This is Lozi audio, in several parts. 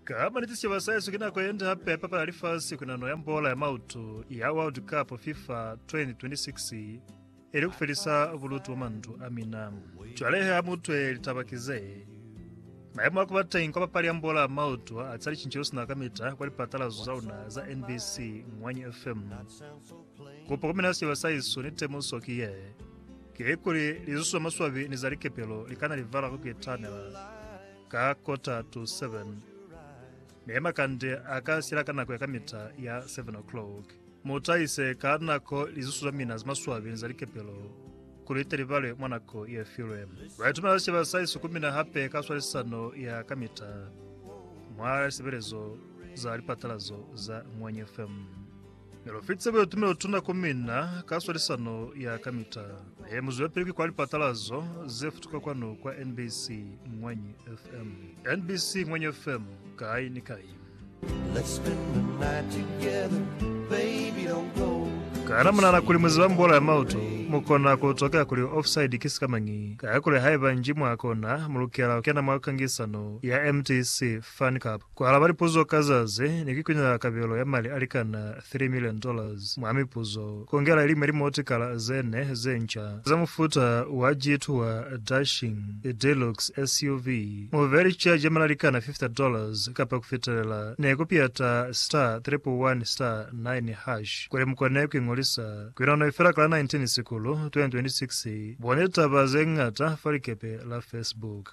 Ka maniti sicaba sa Yesu ki nako ye nde hape ya papala ya lifasi ku nano ya mbola ya mautu ya World Cup FIFA 2026 ili ku felisa bulutu mwa mandu a mina. Cwale he ha mu utwe litaba ki ze, Mayemo a ku ba teñi kwa papali ya mbola ya mautu a ca licince lu si na kamita kwa lipatalazo za luna za NBC, Ngwanyi FM. Kupo ku mina sicaba sa Yesu ni temuso ki ye, kikuli lizuso za maswabi ni za likepelo li kana livala ku ku itanela. Ka kota to seven, mi makande a ka sila ka nako ya kamita ya seven o'clock. Mu tahise ka nako lizusu za mina za maswabi za likepelo, kuli li te li balwe mwa nako ye filwe. Baitumela ze ba sa isukumina hape ka swalisano ya kamita mwa lisebelezo za lipatalazo za Ngwenya FM. Ne lu fitise buetume o tuna ku mina ka swalisano ya kamita. He mu zwelapili ki kwa lipatalazo ze futuka kwanu kwa NBC Ngwanyi FM. NBC Ngwanyi FM, kai ni kai. Let's spend the night together, baby, don't go. Kana munana kuli muziba mbola ya mauto mukona kutokea kuli offside ki sikamañi? Kaya kuli haiba nji mwakona, mulukela kukena mwa kangisano ya MTC Fan Cup. Ku alaba lipuzo ka za ze ne ki kunyela kabelo ya mali a likana three million dollars mwa mipuzo, ku ongela ili mwa limotikala ze ne ze nca za mufuta wa Jeep wa Dashing Deluxe SUV, mu be li caji ya mali a likana fifty dollars kapa ku fitelela, ne ku piyata star triple one star nine hash kuli mu kone ku ingolisa. Ku ina noi fela ka la 19 Sikulu 2026, boni litaba ze ñata fa likepe la Facebook.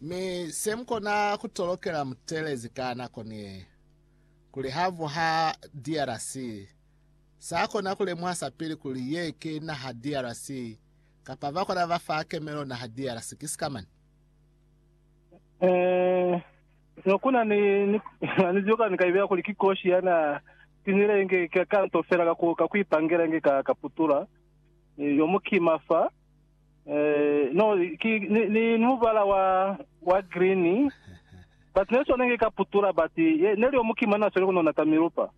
Mi se mu kona ku tolokela mutelezi ka nako ni ye, kuli ha vuha DRC, sa kona ku lemuha sapili kuli ye ki naha DRC, kapa ba kona ba fa kemelo naha DRC. Ki sikamani? Eh, no kuna ni, ni, na ni ziba ni ka ibeya kuli ki koshi ya na tinile inge ka, ka nto fela ka ku, ka ku ipangela inge ka, ka putula. Eh, yo mukima fa. Eh, no, ki, ni, ni, ni mubala wa, wa green. But ne sone nge ka putula, but ye, ne liyo mukima na sole kunona ta milupa.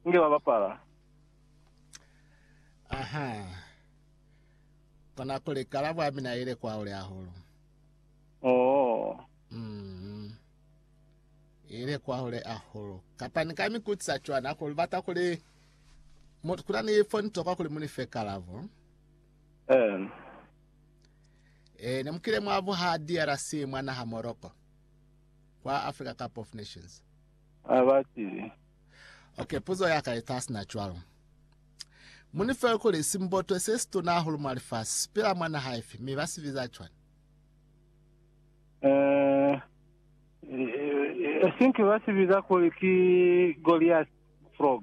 Nge ba bapala. Aha. Kona kuli kalabo ya mina ile kwa ule hahulu. Oh. Mm. Ile kwa ule hahulu. Kapa ni ka mikutsa chwana kuli bata kuli mut kuna ni phone to kwa kuli munife kalabo. Ee. Ee, ne mu kile mwa buha DRC mwa naha Morocco. Kwa Africa Cup of Nations. A ba tile. Okay, puzo ya ka eta sina cwalo. Mu ni fe kuli simbotwe se situna hahulu mwa lifasi sipila mwa naha ifi, mi ba si biza cwani? Eh, eh, I think ba si biza kuli ki Goliath frog.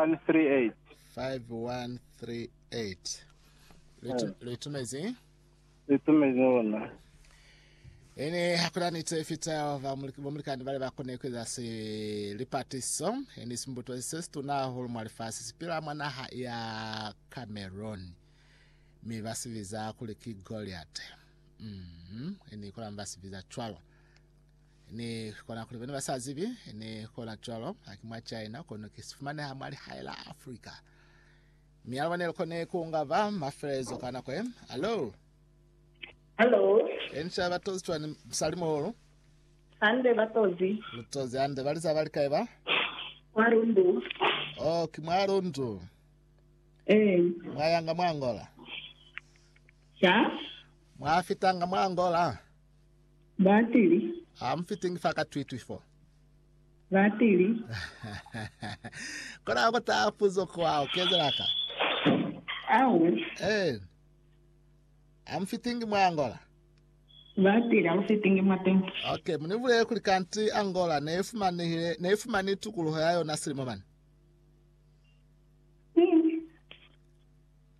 0811245138. 5138. Lu itumezi? Lu itumezi ona. Ene hakuna nito ifita bamulikani bale bakone kueza si lipatiso eni simbuto se situna hahulu mwa lifasi sipila mwa naha ya Cameroon mi basibiza kuli ki Goliate. Mm-hmm. Ni kona ba sibi za cwalo. Ni kona kuli bene ba sa zibi, ni kona cwalo, haki mwa China, kono ki sifumaneha mwa lihae la Afrika. Mi alaba nelo kone kunga ba mafelezo ka nako e. Hello. Hello. Ensha batozi twani msali moholo. Hande batozi. Lutozi hande bali za bali kae ba? Mwa rundu. Oh, ki mwa rundu. Eh. Mwa yanga mwa Angola. Charles. Mwa fitanga mwa Angola? Batili. Ha mu fitingi fa ka Twitwi fo? Batili. Kona ku taha puzo kwa u kezela ka? Awe. Eh. Ha mu fitingi mwa Angola? Batili, ha mu fitingi mwa tembo. Okay, mu ni bulele kuli kanti Angola ne ifumanehile, ne ifumani tukuluho ya yona silimo mane.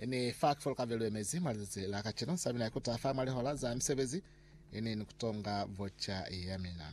Ini fa kifolokave luemezi mwa lizazi la kacenu, sa mina ikuta fa mwa lihola za misebezi, ini ni kutonga voca ya mina.